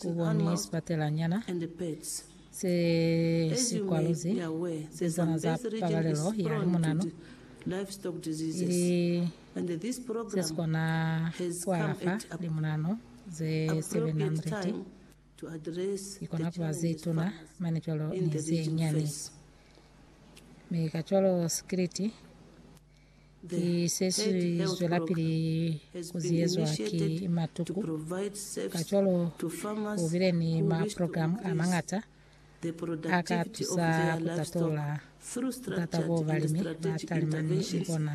Ku ba ni sibatelanyana se si kwaluzi pezana za pabalelo ya limunanu, ili se si kona ku alafa limunanu ze 700, i kona ku ba ze tuna mane cwalo ni ze nyani. Mi kacwalo sikiliti Ki se si zwelapili ku ziyezwa ki matuku. Kacwalo ku bile ni maprogramu a mañata a ka tusa ku tatola butata boo balimi ba talimani ni bona.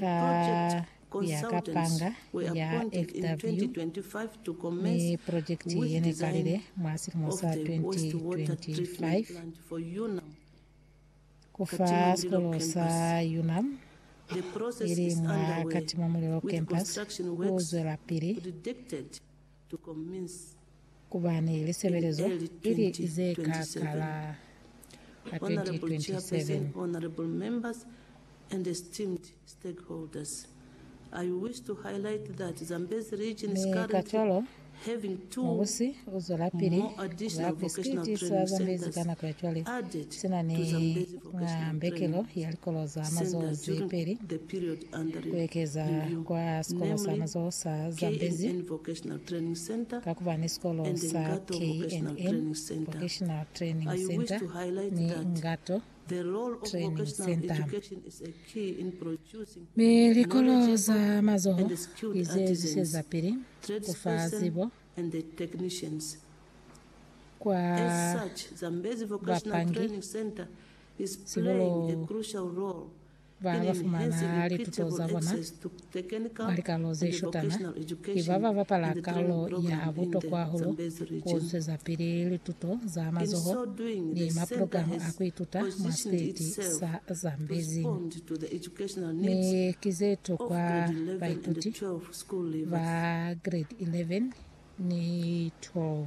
Ka ku ya ka panga ya FW, mi projekiti ye ne kalile mwa silimo sa 2025 ku fa sikolo sa UNAM ili mwa Katimamulilo Campus ku zwelapili. Ku ba ni lisebelezo i li ze ka kala ka 2027. Mi kacwalo, mubusi u zwelapili ku ba Pisikiti sa Zambezi ka nako ya cwale, sina ni mwa mbekelo ya likolo za mazoho ze peli. Ku ekeza kwa sikolo sa mazoho sa Zambezi ka kuba ni sikolo sa KNN Vocational Training Centre ni Ngato Training Centre. Mi likolo za mazoho ki ze zwisezapili ku fa zibo kwa bapangi, sihulu Ba ba fumana lituto za bona mwa likarolo ze shutana ki ba ba bapala karolo ya butokwa hahulu ku zwezapili lituto za mazoho ni maprogramu a ku ituta mwa siteti sa Zambezi. Mi ki ze tokwa baituti ba grade 11 ni 12.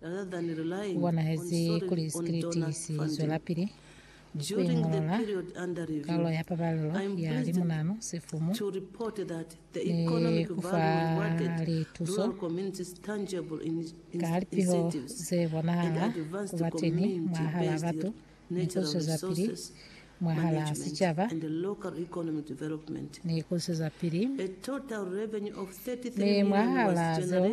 Ku bonahezi kuli sikiliti si zwelapili ku iñolola kaulo ya pabalelo ya limunanu, sifumu, ni ku fa lituso ka lipiho ze bonahala ku ba teni mwahal'a batu ni ku zwezapili mwahal'a sicaba ni ku zwezapili ni mwahal'a zeo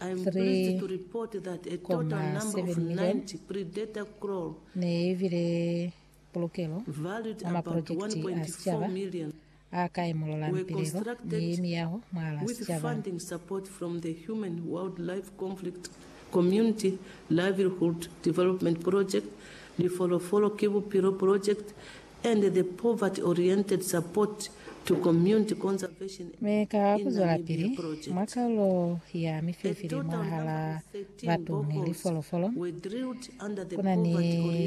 3.7 milioni ne i bile pulukelo mwa mapulojekiti a sicaba a ka imolola lipilelo ni miyaho mwa la sicaba. and the poverty-oriented support to community conservation Mi ka in kuzwelapili Namibia mwa project. kalulo ya mifilifili mwahalaa batu ni lifolofolo, Were drilled under the kuna ni poverty-oriented.